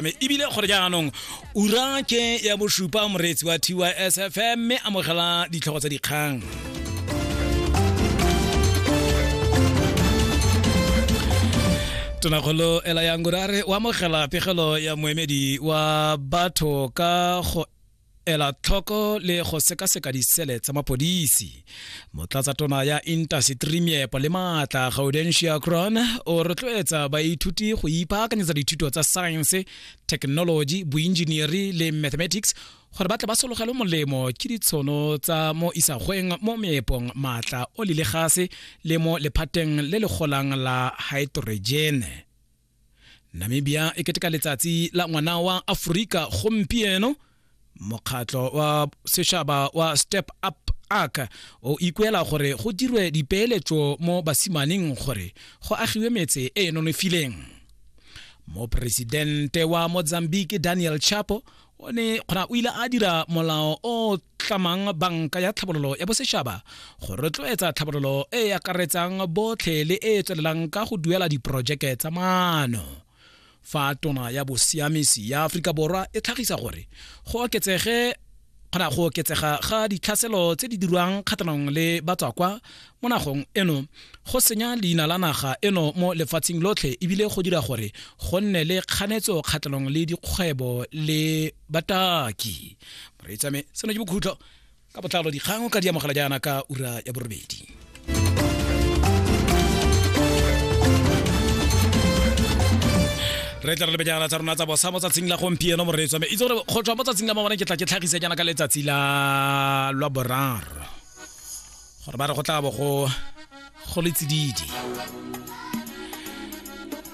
mme ebile gore jaanong ura ke ya bosupa moreetsi wa tys fm mme amogela ditlhogo tsa dikgang tonakgolo ela yang gore a re o amogela pegelo ya moemedi wa batho ka go ela tlhoko le go sekaseka disele tsa mapodisi motlatsa tona ya intaseteri meepo le maatla gaudentia cron o rotloetsa baithuti go ipaakanyetsa dithuto tsa science technology boenjinieri le mathematics gore ba tle ba sologelwe molemo ke ditshono tsa mo isagweng mo meepong maatla o le legase le mo lephateng le le golang la hydrogene namibia e keteka letsatsi la ngwana wa aforika gompieno mokgatlho wa sešaba wa step up ark o ikuela gore go dirwe dipeeletso mo basimaneng gore go agiwe metse e e nonofileng moporesidente wa mozambique daniel chapo o ne kgona o ile a dira molao o tlamang banka ya tlhabololo ya bosetšhaba go rotloetsa tlhabololo e e akaretsang botlhe le e e tswelelang ka go duela diporojeke tsa maano fa tona ya bosiamisi ya aforika borwa e tlhagisa gore go oketsege kgona go oketsega ga ditlhaselo tse di dirwang kgatlhanong le batswakwa mo nagong eno go senya leina la naga eno mo lefatsheng lotlhe ebile go dira gore go nne le kganetso kgatlhanong le dikgwebo le bataki moreetsame seno ke bokhutlo ka botlalo dikgang ka di amogela jaana ka ura ya borobedi re tla re lebejana tsa rona tsa bosa mo tsatsing la gompieno moreetswa me itse gore go tswa mo tsatsing la mabone ke tla ke tlhagise jaana ka letsatsi la lwa boraro gore ba re go tla bo go go le tsididi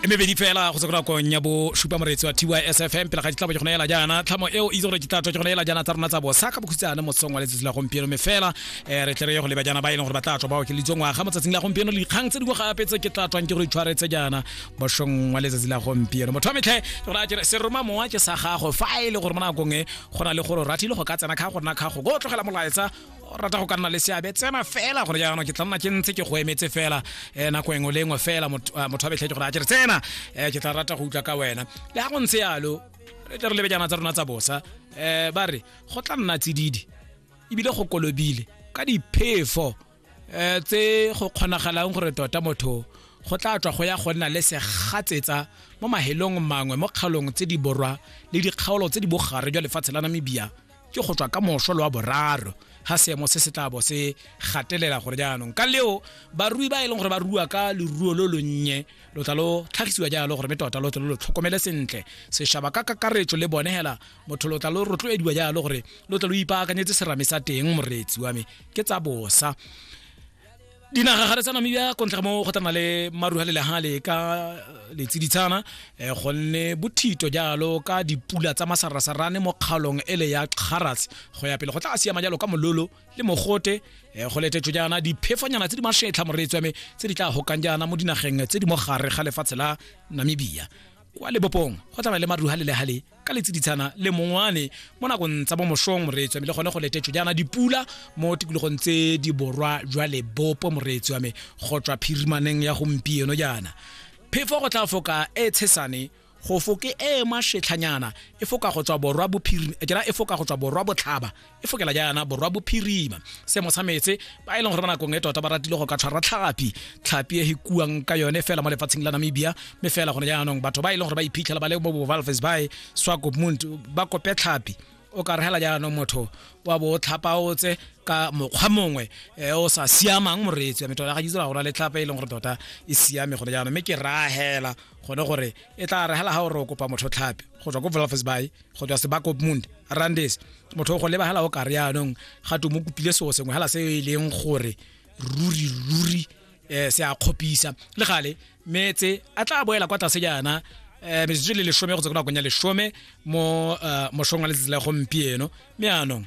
e mebedi fela go sekora kong ya bo supa moretsi wa tysfm pele ga ditlabo ke go neela jaana tlhamo eo itse gore ke tlatwa ke go neela jaana tsa rona tsa bosa ka bokhutsana mosong wa letsatsi la gompieno mme fela eh, re tle re ye go leba jaana ba e leng gore ba tla tswa ba okelitse ngwaga mo tsatsing la gompieno le dikgang tse dingwe gape tse ke tla tswang ke go itshwaretse jaana bosong wa letsatsi la gompieno motho wa metlhe ke gore a kere seroma mowa ke sa gago fa e le gore mo nakong e go na le gore ratile go ka tsena kga go nna kgago go tlogela molaetsa o rata go ka nna le seabe tsena fela gore jaanong ke tla nna ke ntse ke go emetse fela um nako engwe le engwe fela motho a betlhetse gore a kere tsena um ke tla rata go utlwa ka wena le ga go ntse yalo re tle re lebe jana tsa rona tsa bosa um ba re go tla nna tsididi ebile go kolobile ka diphefo um tse go kgonagalang gore tota motho go tla tswa go ya go nna le segatsetsa mo mahelong mangwe mo kgaolong tse di borwa le dikgaolo tse di bogare jwa lefatshe la namibia ke go tswa ka moso le wa boraro ga seemo se se tla bo se gatelela gore jaanong ka leo barui ba e leng gore ba rua ka leruo lo lonnye lo tla lo tlhagisiwa jalo gore mme tota lo tle lo tlhokomele sentle sešaba ka kakaretso le bone hela motho lo tla lo rotloediwa jalo gore lo tle lo ipaakanyetse serame sa teng moreetsi wa me ke tsa bosa dinaga gare tsa namibia kontle ga mo go tana le maru a lelehale ka eh, letsiditshana eh, gonne bothito jalo ka dipula tsa masarasarane mo kgaolong ele ya kgaras go ya pele go tla siama jalo ka mololo le mogote eh, go letetswe jaana diphefonyana tse di mashetlha moreetswame tse di tla gokang jaana mo dinageng tse di mo gare ga lefatshe la namibia kwa lebopong go tsamaya le maruha le lehale ka letsiditshana le mongwane mo nakong tsa bomošong moreetsi wa me le gone go letetso jaana dipula mo tikologong tse di borwa jwa lebopo moreetsi wa me go tswa phirimaneng ya gompieno jaana phefo go tla foka e tshesane go foke e mašetlhanyana e foka go tswa borwa bophiri kera e foka go tswa borwa botlhaba e fokela jaana borwa bophirima seemo sa metse ba e leng gore ba nakong e tota ba ratile go ka tshwara tlhapi tlhapi e hikuang ka yone fela mo lefatsheng la namibia mme fela gone jaanong batho ba e leng gore ba iphitlhela ba le mo bovalves bae swakopmund ba kope tlhapi o ka regela jaanong motho wa bo tlhapaotse ka mokgwa mongwe e o sa siamang moreetsi ya metho ya gaitse ra gona le tlhapa e leng gore tota e siame gone jaanong mme ke rahela gone gore e tla regela ga o re o kopa motho tlhapi go tswa ko valves bae go tswa sebakopmund randes motho go lebagala o kare yaanong ga to mo kopile seo sengwe hala se e leng gore ruri ruri um se a kgopisa le gale metse a tla boela kwa tlase jaana um metsotso le lesome go tsa ko nakong ya lesome mo eh, mosong wa letsatsi la gompieno mme anong